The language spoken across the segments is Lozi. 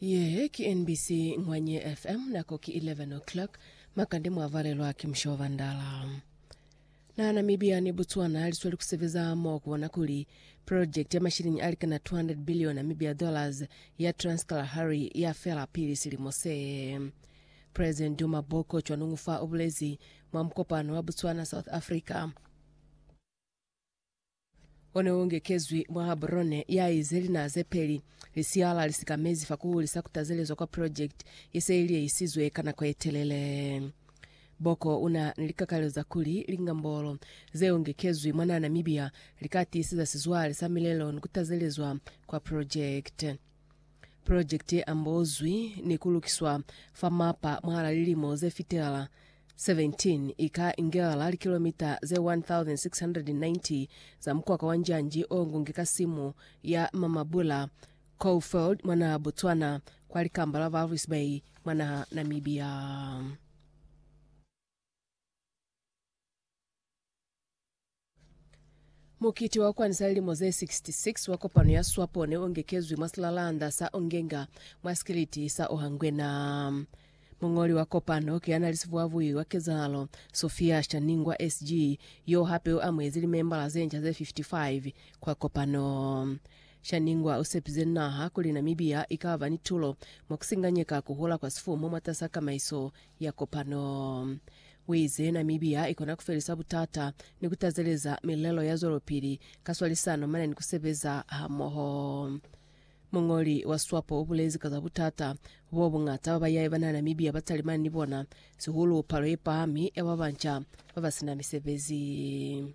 Ye ki NBC Ngwanye FM nako ki 11 o'clock makande mwavalelwa ki Mushoba Ndala. Na Namibia ni Botswana lisweli kusebeza mo kubona kuli project ya mashilingi alikana 200 billion Namibia dollars ya Trans-Kalahari yafela pili silimo se. President Duma Boko cwanungufa ubulezi mwa mukopano wa Botswana South Africa O ne u ngekezwi mwa Haburone, ya ize linaha ze peli, lisihala li sikamezi fa ku hulisa ku tazelezwa kwa projekiti ye se i liehisizwe ka nako ye telele. Boko u na ni likakalelo za kuli lingambolo ze u ngekezwi mwa naha Namibia li ka tiiseza sizwale sa milelo ni ku tazelezwa kwa projekiti. Pulojekiti ye ambozwi ni ku lukiswa fa mapa mwahala lilimo ze fitelala 17 i ka ingelala likilomita ze 1,690 za mukwaka wa njanji o ngungi ka simu ya Mamabula Coalfield mwa naha Botswana kwa likamba la Walvis Bay mwa naha Namibia. Mukiti wa kukwanisa lilimo ze 66 wa kopano ya swapo ne u ngekezwi mwa silalanda sa Ongenga mwa Sikiliti sa Ohangwena. Muñoli wa kopano ki ya na li sivuavui wa kezahalo, Sophia Shaningwa SG, yo hape u amuhezi limembala ze nca ze 55 kwa kopano. Shaningwa u sepize naha kuli Namibia i ka ba ni tulo mwa ku singanyeka ku hula kwa sifumu mwatas'a kamaiso ya kopano. U ize Namibia i kona ku felisa butata ni ku tazeleza milelo ya zwelopili ka swalisano mane ni ku sebeza hamoho. Muñoli wa Swapo u bulezi ka za butata bo buñata ba bayai bana Namibia ba talimani ni bona, sihulu palo ye pahami ya ba banca ba ba sina misebezi.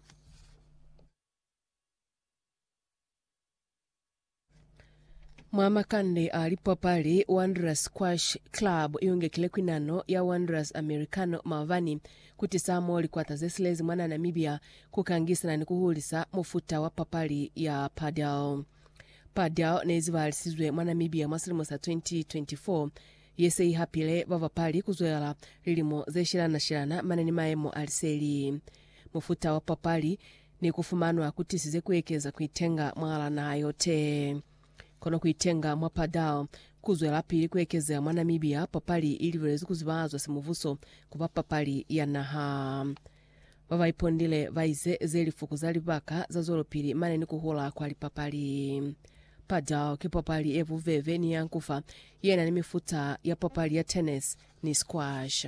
Mwa makande a lipapali, Wanderers Squash Club iungekile kwinano ya Wanderers Americano maabani kutisa mo likwata zesilezi mwana Namibia kukangisana ni kuhulisa mufuta wa papali ya padel. Padel neizibahalisizwe mwa Namibia mwa silimo sa 2024 yese ihapile babapali kuzwelala lilimo zeshelana-shelana mane ni maemo a liseli. mufuta wa papali ni kufumanwa kutisize kuekeza kuitenga mwala naha yote. Kono kuitenga mwa Padal kuzwelapili kuekezeha mwa Namibia, papali ilibelezwi kuzibazwa simubuso kuba papali ya naha. Babaipondile baize zelifuku za libaka zazwelopili mane ni kuhula kwa lipapali. Padal ki papali yebubebe ni yankufa yenani mifuta ya papali ya tennis ni squash.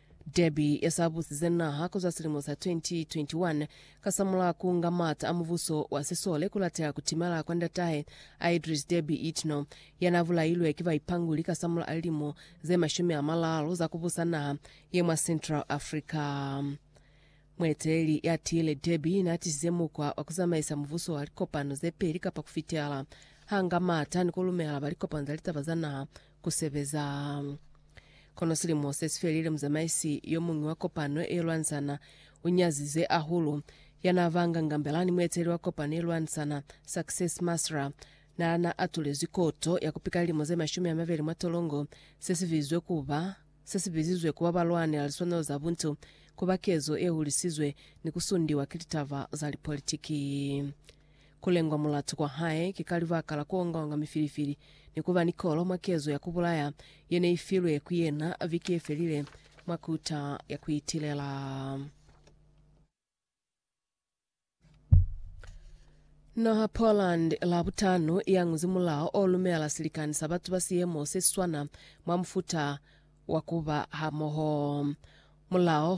Derby ya sa busize naha ku zwa silimo sa 2021 kasamulaho ku nga mata a mubuso wa sisole ku lateha ku timela kwa ndatahe a Idriss Deby Itno, ya na bulailwe ki baipanguli kasamulaho a lilimo ze mashumi a malalu za ku busa naha ye mwa Central Africa. Mueteleli ya tiile Deby na tisize mukwa wa ku zamaisa mubuso wa likopano ze peli kapa ku fitela ha nga mata ni ku lumela ba likopano za litaba za naha ku sebeza. Kono silimo se si felile, muzamaisi yo muñwi wa kopano ye lwanzana u nyazize hahulu. Ya n'a banga ngambela ni mueteleli wa kopano ye lwanzana, Success Masra, n'a na atulezwi koto ya ku pika lilimo ze mashumi a mabeli mwa tolongo, se si bizwe ku ba, se si bizizwe ku ba ba lwanela liswanelo za buntu, ku ba kezo ye hulisizwe ni ku sundiwa ki litaba za lipolitiki. Ku lengwa mulatu kwa hae ki ka libaka la ku ongaonga mifilifili ni ku ba ni kolo mwa kezo ya ku bulaya ye ne i filwe ku yena viki ye felile mwa kuta ya ku itilela. Naha Poland la butano i anguzi mulao o lumela silikani sa batu ba siemo se si swana mwa mufuta wa ku ba hamoho. Mulao